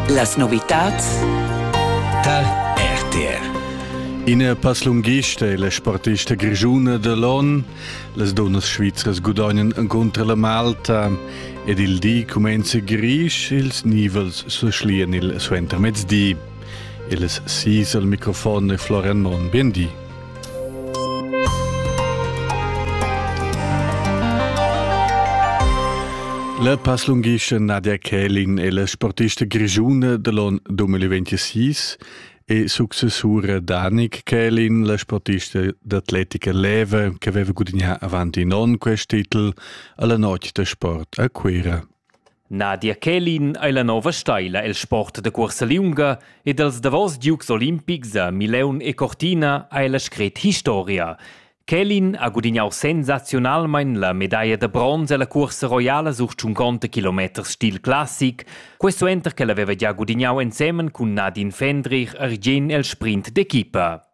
Las novitads tar RTR. Ina passlunghista e la sportista grischuna de l'on, las dunnas svizras gudagnan contra la Malta ed il di cumenza grisch, ils nivels se schlian il suentermezdi. Il sis al microfon è Florian Monn. Bien di. La passlunghischa Nadia Kälin è la sportista grischuna da l'on 2026 e successura Danik Kälin, la sportista d'atletica leva che aveva gudagnà avant in onn quest titel alla notg da sport a Cuira. Nadia Kälin ei la nova steila el sport da cuorsa liunga ed els davos giugs olimpics a Mileun e Cortina ei la scret historia. Kälin ha gudignau sensaziunalmein la medaglia da bronz ella cuorsa roiala sur 50 km stil classic, quessuenter ch'el haveva gia gudignau ensemen cun Nadine Fendrich argien el sprint d'equipa.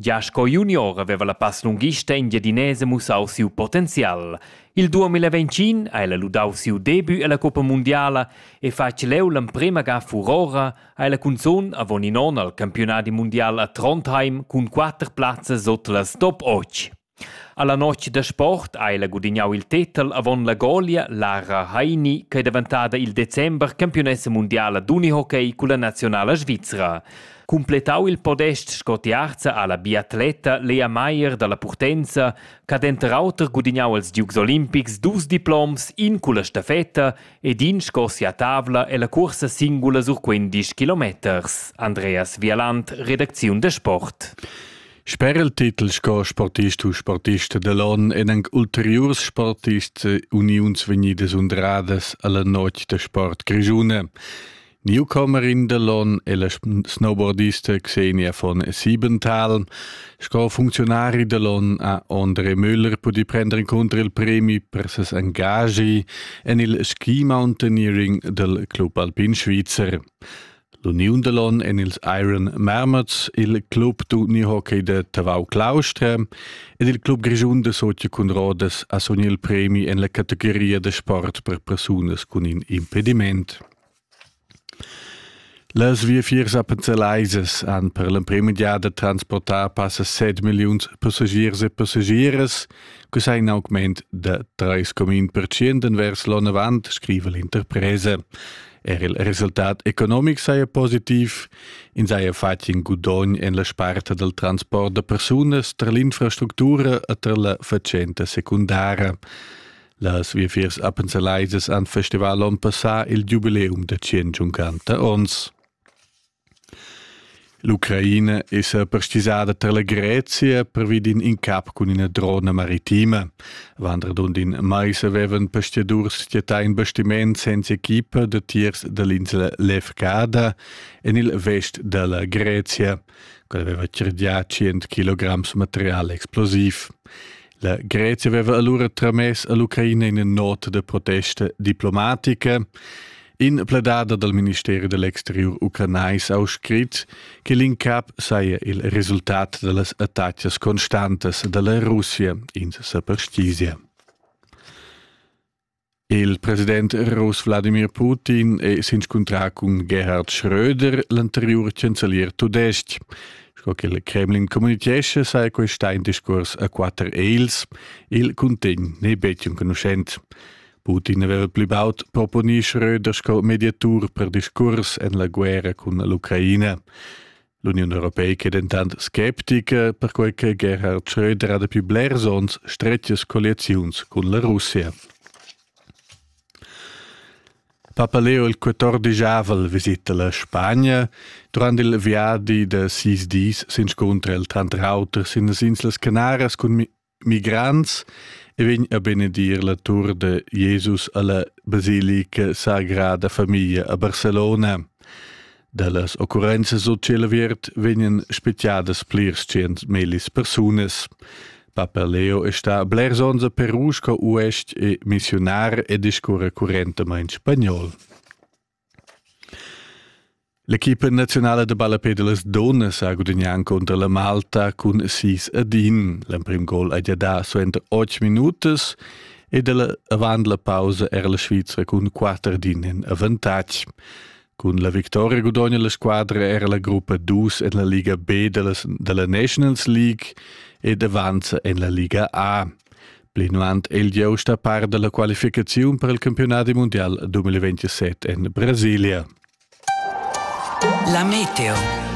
Gia sco junior haveva la passlunghista engiadinesa mussau siu potenzial. Il 2021 ha ella ludau siu debut ella coppa mundiala e fatg leu l'emprema ga furora ha ella cunzun avon in onn al campiunadi mundial a Trondheim cun quater plazzas sut las top 8. Alla notg da sport ha ella gudignau il tetel avon la golia Lara Heini ch'ei daventada il december campiunessa mundiala d'unihockey culla naziunala svizra. Cumpletau il podest sco tiarza ha la biatleta Lea Meier dalla Purtenza ch'ha denter auter gudignau als Dukes olimpics dus diploms, in culla stafetta ed in sco sia tavla ella cuorsa singula sur quindisch kilometers. Andreas Vialand, redacziun da sport. Sper il titel sco sportist u sportista da l'on èn anc ulteriurs sportists uniuns vegnidas undradas a la notg da sport grischuna. Newcomerin da l'on è la snowboardista Xenia von Siebenthal. Sco funzionari da l'on ha Andre Müller pudì prendere incontro il premi per ses engagi en il ski mountaineering dal Club Alpin Svizzer. L'uniun da l'on en ils Iron Marmots, il club d'uni hockey da Tavau Claustra ed il club grischun da Socia cun Rodas ha sogni il premi en la categoria da sport per persunas cun in impediment. Las viafiers appenzelaisas han per l'emprima giada transportà passa 7 milliuns passagiers e passagiers, che sei in augment da 3,1% vers l'onn avant, scrive l'interpresa. Er il resultat economic saja positiv, ins haja fatg in gudogn en la sparta dal transport da persunas tar l'infrastructura e tar la fatschenta secundara. Las viafiers appenzelaisas han festival onn passà il giubileum da 150 onns. L'Ucraina esa perstgisada tar la Grezia pervi d'in incap cun üna drona maritima. Vandradund in mais avevan pestidurs skiatà in bastiments senza equipa da tiers da l'insla Lefkada en il vest da la Grezia, quella aveva cerdià 100 kg material explosiv. La Grezia aveva alura tramess a l'Ucraina ina nota da protesta diplomatica. In pledada dal ministeri da l'exteriur ucranais ha scrit che l'incap saja il resultat da las attacas constantas da la Russia in superstizia. Il president russ Wladimir Putin è s'inscuntrà cun Gerhard Schröder, l'anteriur chancelier tudestg. Sco che il Kremlin communitgescha, saja questa in discurs a quatter eils. Il cuntegn n'è betg enconuschent. Putin aveva pli baud proponì Schröder sco mediatur per discurs en la guerra cun l'Ucraina. L'Uniun Europeica è dentant sceptica, perquai che Gerhard Schröder ha dapi blers onns stretgas colliaziuns cun la Russia. Papa Leo il 14 aval visita la Spagna. Durant il viadi da sis dis s'inscuntra el tranter auter sin las Inslas Canaras cun migrants e vegn a benedir la tur de Jesus alla basilica Sagrada Familia a Barcelona. Dallas occurrenzas sul Cielaviert vegnan speciadas plirs cent melis persunas. Papa Leo está blers ons a Peru sco uest e missionar e discurre currentamente spagnol. L'equipa naziunala da ballapè da las dunnas ha gudagnà encunter la Malta cun sis ad in. L'emprim gol hai dà suenter otg minutas ed avant la pausa era la Svizra cun quatter d'in en avantatg. Cun la victoria gudogna la squadra era la gruppa dus en la Liga B da la, da la Nations League ed avanza en la Liga A. Plinavant è il giust a par da la qualificaziun per il campiunadi mundial 2027 en Brasilia. La meteo.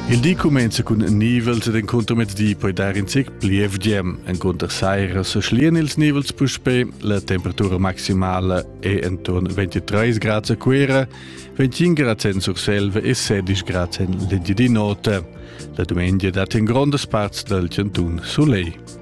Il di cumenza cun nivels ed enconter mezdi poi dar in zic plievgem. Enconter saira sa schlian ils nivels puspè, la temperatura maximala è entorn 23 grad a Cuera, 25 grad en Surselva e 16 grad en l'Engiadin'Ota. La dumengia dat in grondas parts dal chantun soleil.